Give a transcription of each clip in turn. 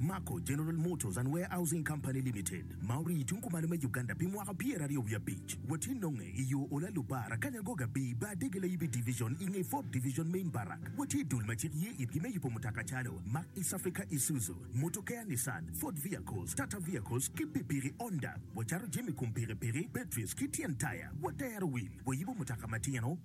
Mako General Motors and Warehousing Company Limited ma orii tung kumalo me Uganda pi mwaka pyera aryo wiye abic watye nonge i yo Ola Lubara Kanya Goga Bii Bar Dege Layibi Division i nge Ford Division Main Barrack watye dul ma cik ye itgi me yubo mutoka calo Mack East Africa Isuzu Motokea Nissan Ford Vehicles Tata Vehicles ki Pipiki Honda wacato jami kom pikipiki batteries ki tyen taya watero wil wayubo mutoka matino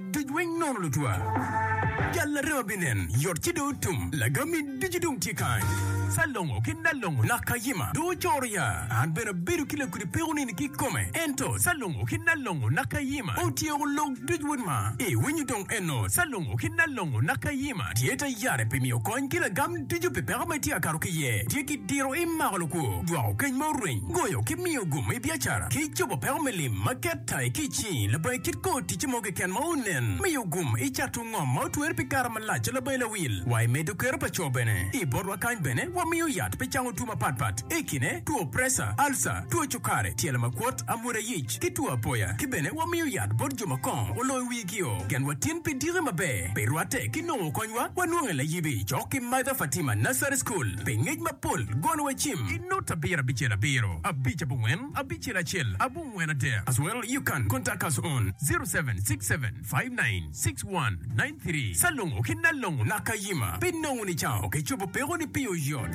Duc weng nono lutwa. Jal arema binen, yot ci dong otum. Lagami ducu dong tye kany. Calongo ki Nalongo nak Kayima dong ocoro ya. An bene abedo ki lakudi peko nini ki kome. Ento Calongo ki Nalongo nak Kayima otyeko lok duc wod ma. I winyo dong eno Calongo ki Nalongo nak Kayima tye ta yare pi miyo kony ki lagam ducu pi peko ma itye ka kato ki iye. Tye ki diro imako lukwo, jwako keny ma orweny, goyo ki miyo gum i biacara, ki cobo peko me lim ma ket. Tayo ticci. Labayi kit kor ticce mo keken ma onen me yo gum, icato ngom ma otwer pi kare malac a labayi lawil, wa imedo kero pa co bene. I botwa kany bene wamiyo yat pi cango two mapat pat, i kine two preca, alca, two cukare, tyelo makwot, amwoda yic, ki two apoya. Ki bene wamiyo yat bot jo ma kongo oloyo wigio. Genwa tin pi diki maber, pi rwatte ki nongo konywa. Wanonge layibi cok ki Mother Fatima Nursery School pi ngec mapol, golowa cim. I nota abiro abicel abiro, abic abongwen, abicel acel abongwen adek as well you can contact us on 0767596193 salongo ki nalongo nakayima pinongo ni cao kicobo peko ni pi oyot.